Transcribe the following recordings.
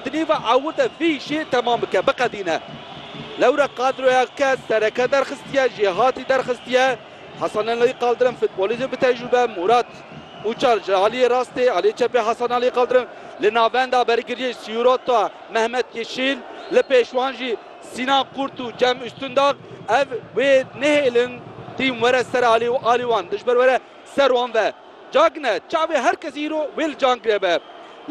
Di nêva ew de vê jê temam bike, biqedîne. Lewre kadroya ke sereke derxistiye, jêhatî derxistiye, Hasanalî Kaldirim futbolîst bi tecrûbe, Mûrat Ûçar ji aliyê rastê, aliyê çepê Hasanalî Kaldirim, li navenda bergiriyê Sîrota Mehmet Yeşîl, li pêş wan jî Sînan Kurt û Cem Ustundağ, ev wê nehêlin tîm were ser alî û alî wan dijber were. Ser wan ve cagine çavê her kesî îro wê li can gireve.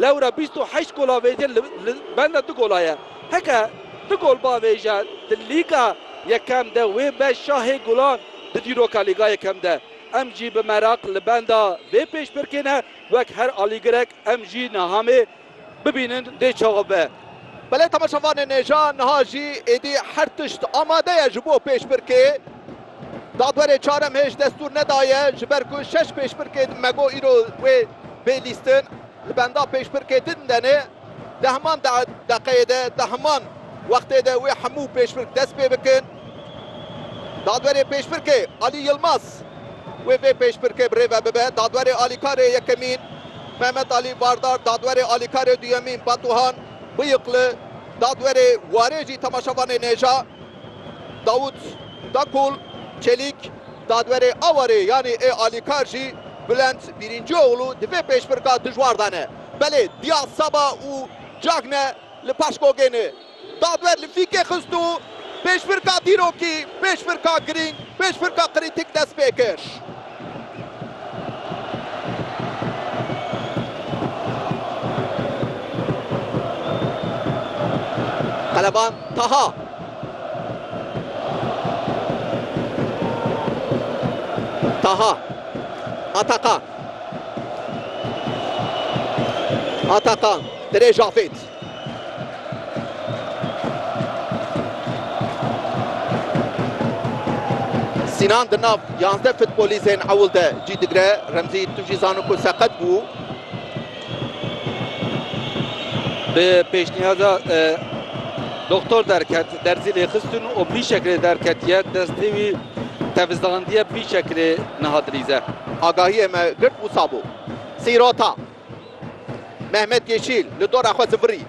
Lewre bîst û heşt gola vêjê li li benda du gola ye. Heke du gol ba vêje di Lîga Yekem de wê be şahê golan di dîroka Lîga Yekem de. Em jî bi meraq li benda vê pêşbirkê ne wek her alîgirek em jî niha mê Bibînin dê çawa be. Belê temaşevanê nêja niha jî êdî her tişt amade ye ji bo pêşbirkê. Dadwerê Çarem hêj destûr nedaye ji ber ku şeş pêşbirkê di Mego îro wê bê lîstin li benda pêşbirkê din denê. Di heman deqeyê de di heman wextê de wê hemû pêşbirk dest pê bikin. Dadwerê Pêşbirkê Alî Yilmaz, wê vê pêşbirkê bi rê ve bibe, Dadwerê Alîkarê yekemîn Mehmet Alî Vardar, Dadwerê Alîkarê duyemîn Batuhan Bıyıklı, Dadwerê warê jî temaşevanê nêja Davut Dakul Çelîk, Dadwerê awarê yanî ê alîkar jî Bülent Bîrîncioğlu di vê pêşbirka dijwar de ne. Belê diya seba û cagne li paşgogê ne. Daver li fîkê xist û pêşbirka dîrokî, pêşbirka girîng, pêşbirka krîtîk dest pê kir. Qeleban Taha. Taha. Atakan. Atakan. Dirêj Afêt. Sînan di nav yazdeh futbolîstên ewil de cî digre. Remzî tu jî zano ku seqet bû. Bi pêşniyada e, doktor derket, derzî lê xistin û bî şekilê derketiye, destê wî tevizandiye bî şekilê niha dilîze. Agahiyê me girt wisa bû. Sîrota. Mehmet Yeşîl li dora xwe zivirî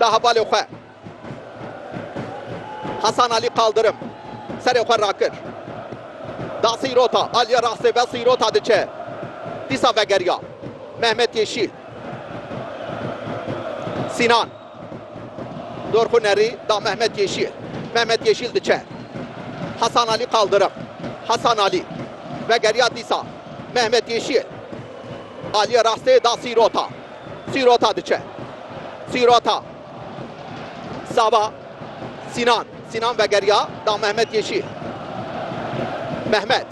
da hevalê xwe. Hasan Alî Kaldirim serê xwe rakir da sîrota. Aliye rastê ve sîrota diçe. Dîsa vegeriya Mehmet Yeşîl. Sînan dorxu nerî da Mehmet Yeşîl. Mehmet Yeşîl diçe. Hasan Alî Kaldirim. Hasan Alî vegeriya dîsa. Mehmet Yeşil aliyê rastê da Sîrota. Sîrota diçe. Sîrota. Saba. Sînan. Sînan vegeriya da Mehmet Yeşil. Mehmet.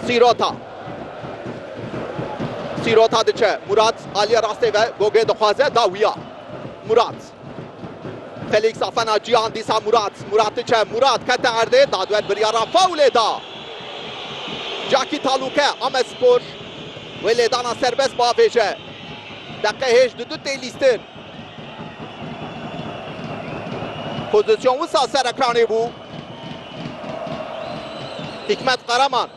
Sîrota. Sîrota diçe. Murat aliyê rastê ve gogê dixwaze da wiya. Murat. Felix Afena Cihan dîsa Murat Murat diçe Murat kete erdê dadwer biryara faulê da Caki Taluke Amedspor wê lêdana serbest biavêje deqe hêj di du tê lîstin pozisyon wisa ser ekranê bû Hikmet Karaman.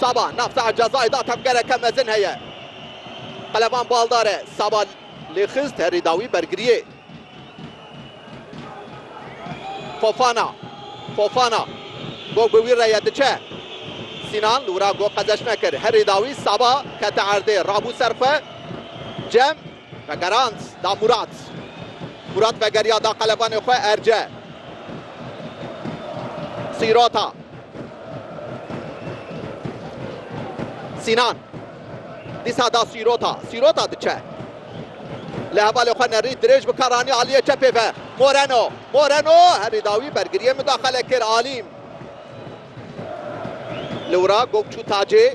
Saba, navçe a cezayê da tevgereke mezin heye. Qelevan baldar e. Saba lê xist herî dawî bergiriyê. Fofana, Fofana, gog bi wî re ye diçe. Sînan li wira gog qezeşme kir. Herî dawî Saba kete erdê. Rabû ser xwe. Cem, Vegerand da Murat. Murat vegeriya da qelebanê xwe erce. Sîrota. Sînan. Dîsa da Sîrota. Sîrota diçe. Li hevalê xwe nerî dirêj bi Karani aliyê çepê ve. Moreno. Moreno herî da wî bergiriyê mudaxale kir Alîm. Li wira Gokçû Tacê.